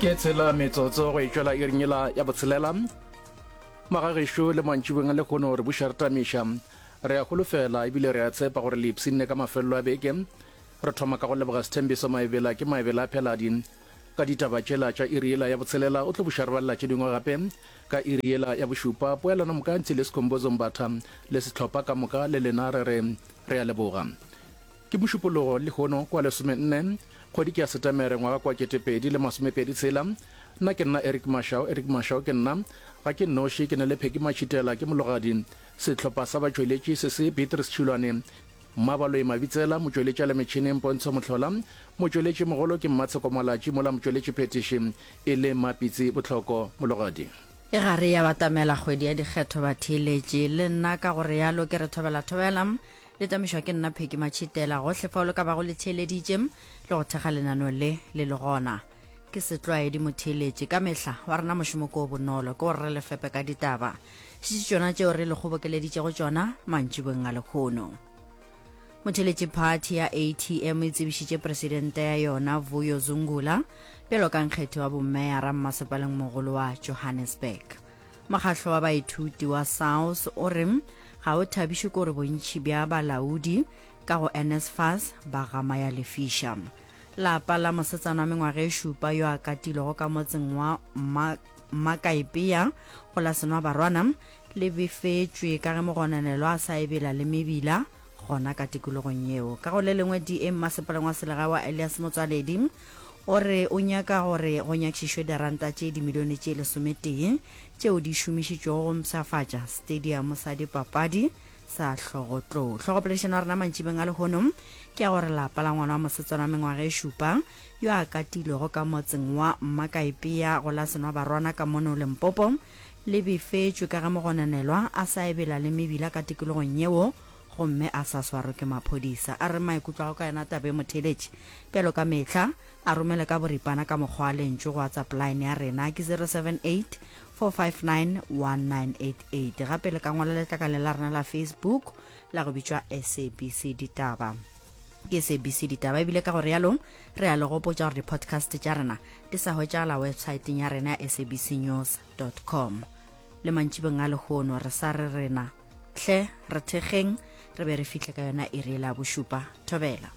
ke tshela metsotso go e tšwela irinyela ya botshelela magagešo le mantšibeng le kgone gore buša re tamiša re a golofela ebile re a tshepa gore le ipshinne ka mafelelo a beke re thoma ka go leboga sethembiso maebela ke maebela a pheladi ka ditaba tšela tša iriela ya botshelela o tlo buša re balela tše dingwe gape ka iriela ya bošupa poelano mokantšhi le sekhombozo mbatha le setlhopha ka moka le lena re re re a leboga Ke Mošupologo lehono kwa lesomenne kgwedi ke ya Setemere ngwaga kwa ketepedi le masomepedi tshela. Nna ke nna Eric Mashau, Eric Mashau ke nna. Ga ke nnoši, ke na le Peggy Matšhitela, ke mologadi. Sehlopha sa batšweletši se se, Beatrice Tšhilwane, Mmabaloi Mabitsela, motšweletši a le metšhineng Pontsho Mohlola, motšweletši mogolo ke Mmatsheko Malatši mola motšweletši phethiši e le Mmapitsi Bohloko. Mologadi. E gare ya batamela kgwedi ya dikgetho batheeletši, le nna ka go realo ke re thobela thobela. Le tamišwa ke nna Pheki Matšhitela. Gohle fao le ka bago le theeleditše le go thekga lenaneo le le le gona. Ke setlwaedi motheeletši ka mehla wa rena mošomo ko o bonolo ke gore re le fepe ka ditaba šitši tšona tšeo re le kgobokeleditšego tšona mantšibong a lekgono. Motheeletši phathi ya ATM e tsebišitše presidente ya yona Vuyo Zungula bjalo ka nkgethi wa bomeyara mmasepaleng mogolo wa Johannesburg. Mokgahlo wa baithuti wa SAUS o re ga o thabišwe kore bontši bja balaodi ka go NSFAS ba gama ya lefiša. Lapa la mosetsana wa mengwaga e šupa yo a katilwego ka motseng wa Mmakaepea go la Senwabarwana le befetšwe ka ge mogononelwa a sa ebela le mebila gona ka tikologong yeo ka go le lengwe da mmasepaleng wa selega wa elias motswaledi o re o nyaka gore go nyakišišwe diranta tše dimilione tše lesometee tšeo di šomišitšwego go mpshafatša stadium sa dipapadi sa hlogotlou hlogopoledišano ya rena mantšibeng a lehono ke ya gore lapa la ngwana wa mosetsana wa mengwaga e šupa yo a katilwego ka motseng wa mmakaepea go la senwa barwana ka mono lempopo Le bifetšwe ka ge mogononelwa a sa ebela le mebila ka tikologong yeo gomme a sa swarwe ke maphodisa. A re maikutlo a gagwe ka yona taba e mo theeletše. Bjalo ka mehla, a romele ka boripana ka mokgwa wa lentšu go WhatsApp line ya rena ke 0784591988 gape le ka ngwala letlakaleng la rena la Facebook la go bitšwa SABC Ditaba. ke sabc ditaba ebile ka go realo re a le gopotša gore di-podcast tša rena di sa hwetšagala websaeteng ya rena ya sabc news com le mantšibeng a lehono re sa re rena hle re thekgeng re be re fihle ka yona e re e la bošupa thobela